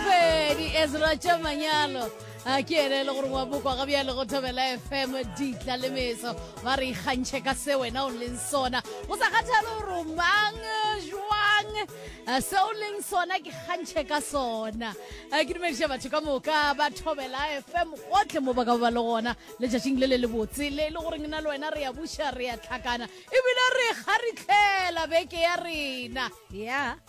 pedi ezra tša manyalo a ke ene e le gore wa bokwa ga bjale go thobela fm ditla le meso ba re ikgantšhe ka se wena o leng sona go sa kgathale gore o mang jwang eh, se o leng sona ke kgantšhe ka sona eh, ke dumediša batho ka moka ba thobela fm gotlhe mo ba ka ba le gona letšatšing le le le botse le e le goreng na le wena re ya buša re ya tlhakana ebile re kgaritlhela beke ya rena ya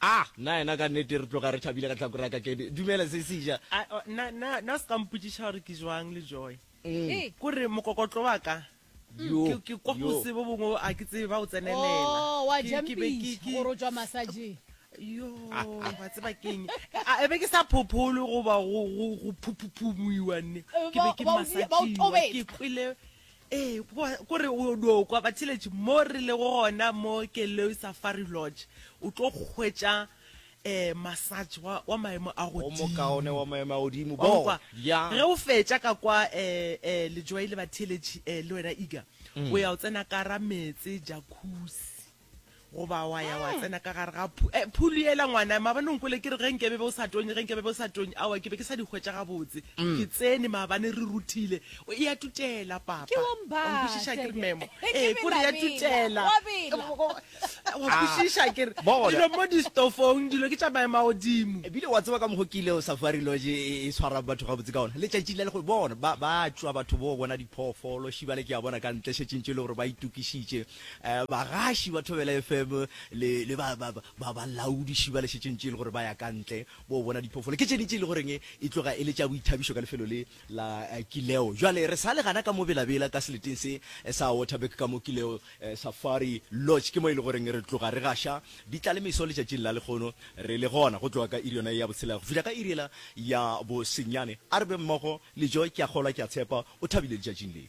Ah, na yena ka nnete re tloga re thabile ka tlhakore ya ka Kedi. Dumela, Sesija. Ah, oh, na, na, na o se ka mpotšiša gore ke jwang le Joy. Ee. Ko re mokokotlo wa ka, Yo, ke, ke kwa yo. gose bo bongwe a ke tsebe ba o tsenelela. Oh, wa Ke- ke be ke- jampiša ke- gore o tšwa masajeng. Yo, wa tseba keng? A e be ke sa phopholwe goba go, go, go phuphuphumuiwa nne. Ke be ke Ba- ba o di- ba o masatšingwa. tobetsa. Ke kwele, Ee, kwa, ko re o no kwa batheletši mo re lego gona mo Keleu Safari Lodge, o tlo hwetša eh, massage wa, wa maemo a O mokaone godimo. wa maemo a godimo. Wa Bo, go kwa? ya. Ge o fetša ka kwa eh, eh, Lejwai le batheletši eh, le wena Iga, o ya o tsena ka ra meetse, jacuzzi. goba wa ya wa tsena ka gare ga eh, phulu ela ngwana maabane o nkwele ke re ge nkebe be o sa tonye ge nkebe be o sa tonye awa ke be ke sa di hwetša gabotse mm. ke tsene maabane re ruthile o e ya tutela papankwešiša ke re memo ee ko re ya tutela wa kwešiša ke re dilo mo distofong dilo ke tša maema godimo ebile wa tseba ka mokgo ke ile o safari loge e, e tshwara batho gabotse ka ona letšatši la le go bona ba tšwa batho bo bona diphoofolo šibale ke ya bona ka ntle šetšintše e le gore ba itokišitše Eh, bagaši ba Thobela FM le, le ba, ba, ba, ba laodiši ba lešetšeng tše e le gore ba ya ka ntle bo bona diphoofolo ke tšene tše e le goreng e tloga e le tša boithabišo ka lefelo le la eh, kileo jale re sa le gana ka mo belabela ka seleteng se eh, sa waterback ka mo kileo eh, safari lodge ke mo e le goreng re tloga re gaša di tla le meso letšatšing la lekgono re le gona go tloga ka iri yona ya botshela go fihla ka iriela ya bosenyane a re be mmogo le joy ke a kgolwa ke a tshepa o thabile letšatšing le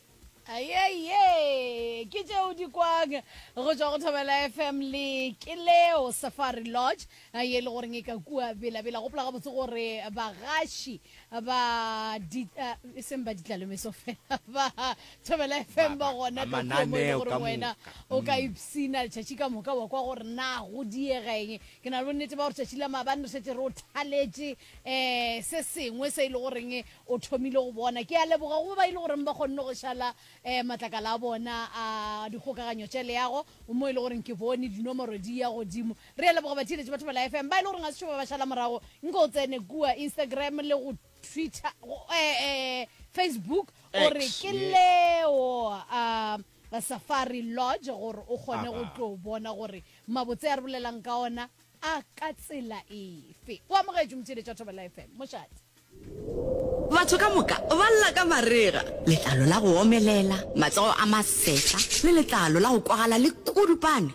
Ayeye, ke tše o di kwang go tšwa go Thobela FM le Keleo Safari Lodge ye e le goreng e ka kua bela-bela. Gopola gabotse gore bagaši ba di uh, e seng ba ditlalomeso fela ba Thobela FM ba gona ka kua mo e le goreng wena o ka mm. ipsina letšatši ka moka wa kwa gore na go diega eng. Ke na le bonnete ba gore tšatši la maabane re šetse re o thaletše um se sengwe se e le goreng O thomile go bona. Ke a leboga go ba ba e le goreng ba kgonne go šala matlakala a bona a dikgokaganyo tša leago, mo e le goreng ke bone dinomoro di ya godimo. Re a leboga batheeletši ba Thobela FM. Ba e le goreng ga se šo ba ba šala morago, nke o tsene kua Instagram le go Twitter, Facebook, o re ke Leo a Safari Lodge gore o kgone go tlo bona gore mabotse a re bolelang ka ona a ka tsela efe. O amogetšwe, motheeletši wa Thobela FM. Mošate. Batho ka moka ba lla ka marega, letlalo la go omelela, matsogo a masefa le letlalo la go kwagala le kudupane.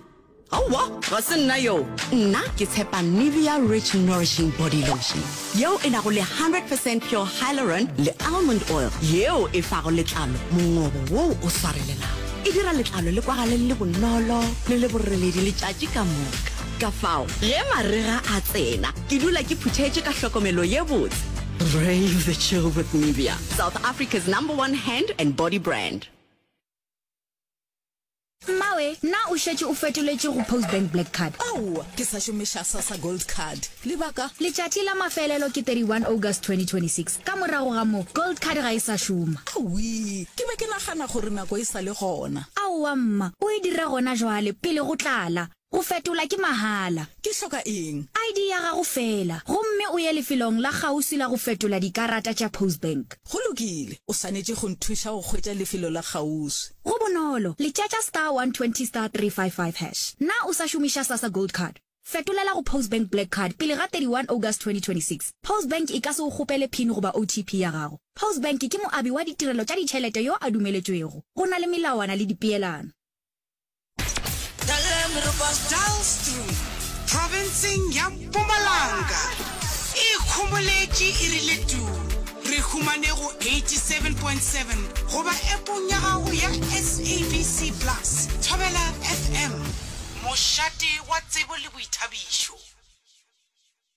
Aowa, ga se nna yoo. Nna ke tshepa Nivea Rich Nourishing Body Lotion, yeo e nago le 100 percent pure hyaluron le almond oil, yeo e fago letlalo mongobo woo o swarelelago. E dira letlalo le kwagale le le bonolo le le boreledi letšatši ka moka. Ka fao ge marega a tsena, ke dula ke phuthetše ka hlokomelo ye botse. Brave the chill with Nivea, South Africa's number one hand and body brand. Mmawe, na o šetše o fetoletše go Postbank Black Card? Aowa, ke sa šomiša Sassa Gold Card. Lebaka? Letšatši la mafelelo ke 31 August 2026. Ka morago ga moo, Gold Card ga e sa šoma. Awii, ke be ke nagana gore nako e sa le gona. Aowa mma, o e dira gona jwale, pele go tlala. Go fetola ke mahala. Ke hloka eng? ID ya gago feela, gomme o ye lefelong la kgauswi la go fetola dikarata tša Postbank. Go lokile. O swanetše go nthuša go hwetša lefelo la kgauswi. Go bonolo, letšatša star 120 star 355 hash. Na o sa šomiša Sasa Gold Card? Fetolela go Postbank Black Card pele ga 31 August 2026. Postbank e ka se go kgopele pin goba OTP ya gago. Postbank ke moabi wa ditirelo tša ditšhelete yo a dumeletšwego. Go na le melawana le dipeelano. Profenseng ya Mpumalanga e ikhomoletše e rile tu. Re humane go 87.7 goba App-ong ya gago ya SABC Plus. Thobela FM, mošate wa tsebo le boithabišo.